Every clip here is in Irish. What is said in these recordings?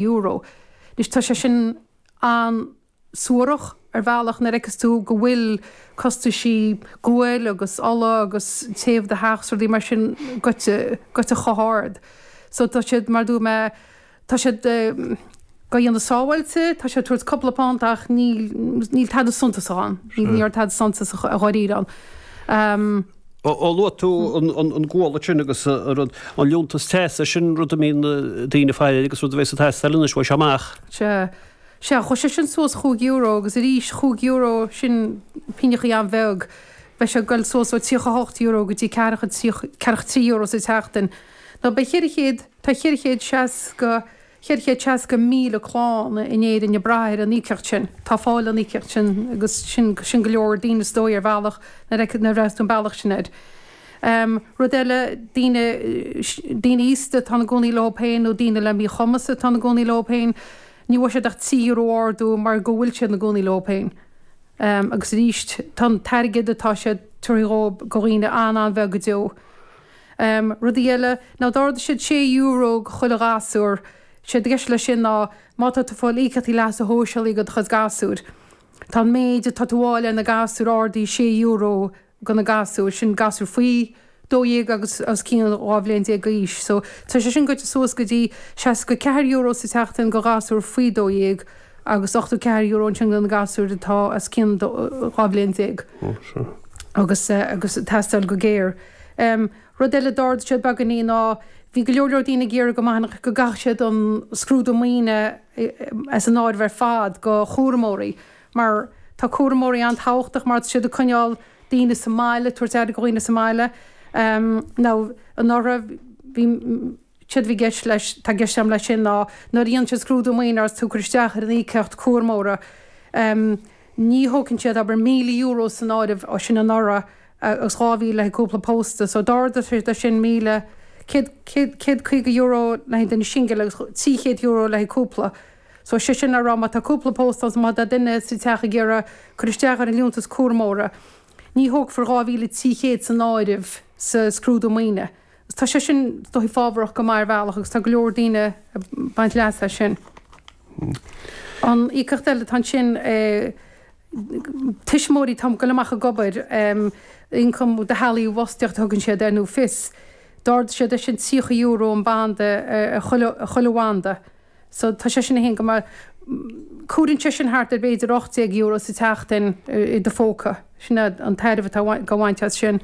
euro. Anois, tá sé sin an-suarach ar bhealach nuair a fheiceas tú go bhfuil costaisí gual agus ola agus téamh do theach 's rudaí mar sin goite chomh hard. So, tá siad, mar a dúirt mé, tá siad dá dhéanamh sábháilte, tá siad ag tabhairt cúpla punt ach níl tada suntasach ann, níl tada suntasach dháiríre ann. Ó luaigh tú an gual ansin agus an liúntas teasa, sin rud a mbíonn daoine a fháil agus rud a bheidh ag teastáil anois uaidh seo amach. Sea. Sea, chuir sé sin suas cúig euro agus arís, cúig euro, sin pingneachaí an-bheag, beidh sé ag dul suas ó tríocha a hocht euro go dtí ceathracha, ceathracha trí euro sa tseachtain. Now beidh ceithre chéad, tá ceithre chéad seasca, 460,000 clann in Éirinn ag brath ar an íocaíocht sin. Atá ag fáil an íocaíocht sin agus sin sin go leor daoine is dóigh ar bhealach nuair a nuair a bhreathnaíos tú an bealach sin air. Rud eile daoine daoine aosta atá ina gcónaí leo féin nó daoine le míchumas atá ina gcónaí leo féin ní bhfuair siad ach trí euro ardú mar go bhfuil siad ina gcónaí leo féin agus arís tá an t-airgead atá siad a thabhairt dhóibh go dhaoine an-an-bheag go deo. Rudaí eile ná d'ardaigh siad sé euro go chuile ghasúr. Séard atá i gceist leis sin ná má tá tú ag fáil íocaíochtaí leasa shóisialaigh do chuid gasúir, tá an méid atá tú a fháil ar na gasúir ardaithe sé euro go na gasúir, sin gasúir faoi dó dhéag agus os cionn dhá bhliain déag d'aois. So tá sé sin goite suas go dtí seasca ceathair euro sa tseachtain go ghasúr faoi dó dhéag agus ochtó ceathair euro ansin go na gasúir atá os cionn dhá bhliain déag. Agus é ag teastáil go géar. Rud eile d'ardaigh siad beagainín ná bhí go leor leor daoine ag iarraidh go mbainfeadh, go gcaithfeadh siad an scrúdú maoine as an áireamh ar fad go cúramóirí mar tá cúramóirí an-tábhachtach mar tá siad ag coinneáil daoine sa mbaile, ag tabhairt aire go dhaoine sa mbaile. Anuraidh bhí. séard a bhí i gceist leis, atá i gceist agam leis sin ná nuair a dhéanann siad scrúdú maoine agus tú ag cur isteach ar an íocaíocht cúramóra, ní thógann siad, abair, €1,000 san áireamh sin anuraidh agus 2,000 le haghaidh cúpla pósta, so d'ardaigh siad é sin i mbliana, céad, céad, céad caoga euro le haghaidh an duine shingil agus trí chéad euro le haghaidh cúpla. So sé sin le rá má tá cúpla pósta ann, so má tá duine sa teach ag iarraidh cur isteach ar an liúntas cúramóra, ní thógfar 2,300 san áireamh sa scrúdú maoine. Tá sé sin, is dóigh, fábharach go maith ar bhealach agus tá go leor daoine ag baint leas as sin. An íocaíocht eile atá ansin, tuismitheoirí atá ag goil amach ag obair, ioncam do theaghlaigh i bhfostaíocht a thugann siad air nó FIS. D'ardaigh siad é sin €30 an banda ar chuile bhanda. so tá sé sin an-go maith. Cuireann sé sin thart ar b'fhéidir €800 sa tseachtain i do phóca. Sin é an tairbhe atá dha bhaint as sin.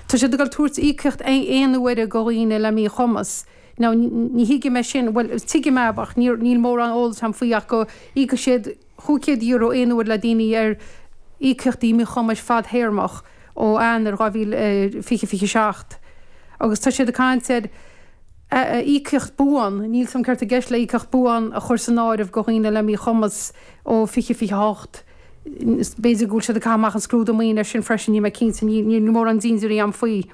Tá siad ag tabhairt íocaíocht aon uaire go dhaoine le míchumas. Now ní thuigim é sin, bhuel tuigim é ach níl mórán eolais agam faoi ach go íocfaidh siad, €500 aon uair le daoine ar íocaíochtaí míchumais fadthéarmach ó Eanáir 2020 27 agus tá siad ag caint ar íocaíocht buan, níl siad ceart i gceist le íocaíocht buan a chur san áireamh go dhaoine le míchumas ó 20 28 b'fhéidir go bhfuil siad ag caitheamh amach an scrúdú maoin ar sin freisin, níl mé cinnte, níl mórán dintiúirí a'm faoi.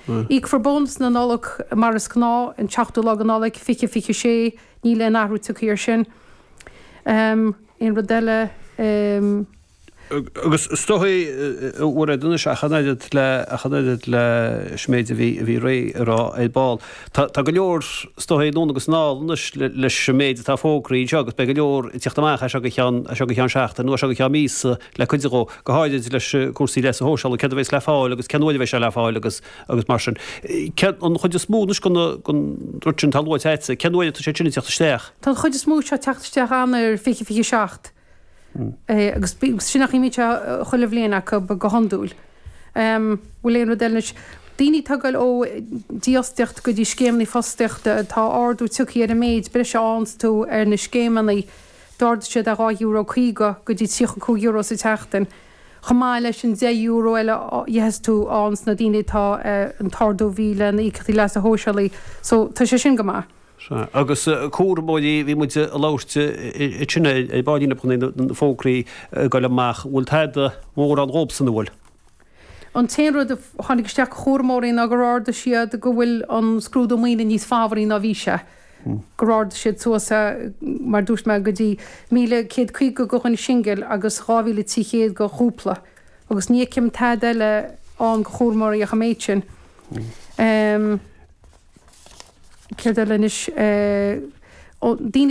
Íocfar bónas na Nollag mar is gnáth an tseachtú lá de Nollaig, fiche, fiche sé, níl aon athrú tiocthaí ar sin. Aon rud eile? Agus stoitheadh buartha anois ach an oiread le ach an oiread leis an méid a bhí a bhí muid a rá ar ball. Tá tá go leor stoitheadh anonn agus anall anois le leis an méid atá fógraí anseo agus beidh go leor ag teacht amach as seo go ceann as seo go ceann seachtain nó as seo go ceann míosa le cuidiú go, go háirid leis cúrsaí leasa shóisialaigh, céard a bheas le fáil agus cén uair a bheidh sé le fáil agus agus mar sin. Céard, an chuid is mó anois den, den rud sin atá luaite agatsa, cén uair atá sé sin ag teacht isteach? Tá an chuid is mó seo ag teacht isteach Eanáir 2027 agus sin mar a bhíonn sé chuile bhliain acu go hiondúil. An bhfuil aon rud eile anois, daoine atá ag goil ó dífhostaíocht go dtí scéimeanna fostaíochta, tá ardú tiocthaí ar an méid breise a fhaigheanns tú ar na scéimeanna, D'ardaigh siad é €2.50 go dtí €35 sa tseachtain, chomh maith leis an €10 eile a gheobhas tú ann sna daoine atá an t-ardú bhí le na híocaíochtaí leasa shóisialaigh, so tá sé sin go maith. Sea, agus cúramóirí, bhí muid a labhairt ansin ar ball bíonn i gcónaí, na fógraí ag dul amach, bhfuil tada mórán dhóibhsan an bhfuil? An t-aon rud a tháinig isteach go cúramóirí ná gur ardaigh siad go bhfuil an scrúdú maoine níos fabhraí ná bhí sé. gur ardaigh siad suas, mar a dúirt mé, go dtí 1,150 go dhuine singil agus 2,300 go chúpla, agus ní fheicim tada eile ann go chúramóirí ach an méid sin. Céard eile anois? Ó, daoine.